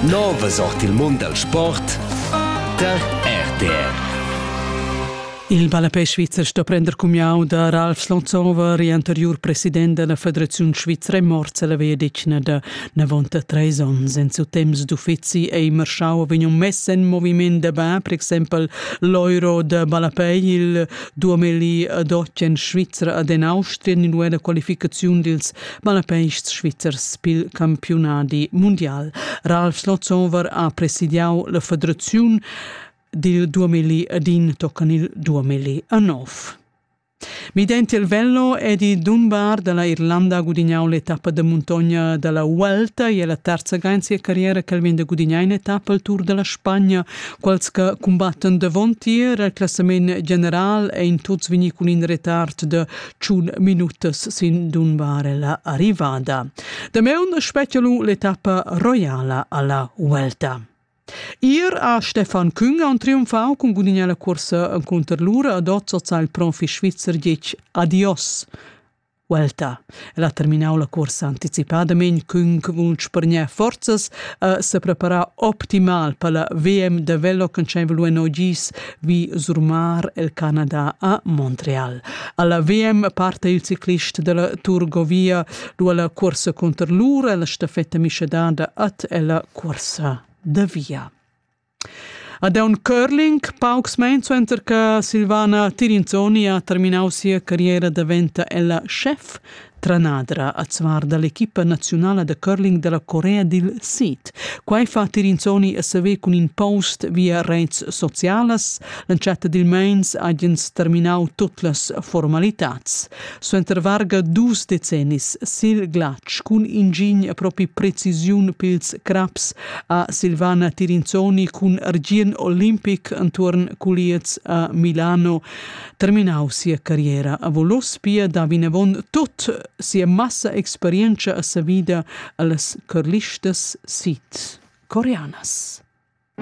Nova sort il mund dal sport tar RTR. Il ballapè svizzer sto prender cumiau da Ralf Slonzover, anteriur president della Federazione Svizra, è morts alla via da 93 onns. En suo temps d'uffizi ei Marschau vegniu mess en moviment da bà, per exempel l'Euro da ballapè, il 2012 en Svizra ad en Austria, in qualificazione dils Balapeists svizzers pil campiunadi mundial. Ralf Slotzover ha presidiau la federaziun dil duamilli ed in toccan il duamilli a nov. Midenti il vello ed i Dunbar dalla Irlanda gudignau l'etappa da montogna dalla Vuelta e la terza ga in sia carriera che vegn da gudignar in etappa al Tour della Spagna. Quels che combattan davon tier il classament general ein tuts vegni cun in retard de tschun minutas sin dunbarella arrivada. Dameun spettielu l'etappa roiala alla Vuelta. Ir a Stefan Küng on triumfau cun gudignar la cursa contr lura ad Ozzozza il profi svizzer dic adios. Vuelta. El ha terminau la cursa anticipadament cun vunsch per gnea forzas a se preparar optimal per la VM de velo che c'è velu en ogis vi surmar il Canada a Montreal. Alla VM parte il ciclist della Turgovia du alla corsa contro lur e la stafetta miscedada at ella corsa da via. Ad un curling, paucs suenter che Silvana Tirinzoni ha terminau sia carriera diventa ella chef Tranadra azuar da l'equipa naziunala da curling da la Corea dil Sid. Quai fa Tirinsoni a saver cun in post via rets socialas. L'entschatta dil meins hagen terminau tut las formalitads. Suenter varga dus decennis sil glatsch cun ingin a propi precisiun pils craps a Silvana Tirinsoni cun Argien Olimpic entuorn culiez a Milano. terminau sia carriera a Volospia da vinavon tot sia massa experienza a sa vida allas carlistas sid coreanas.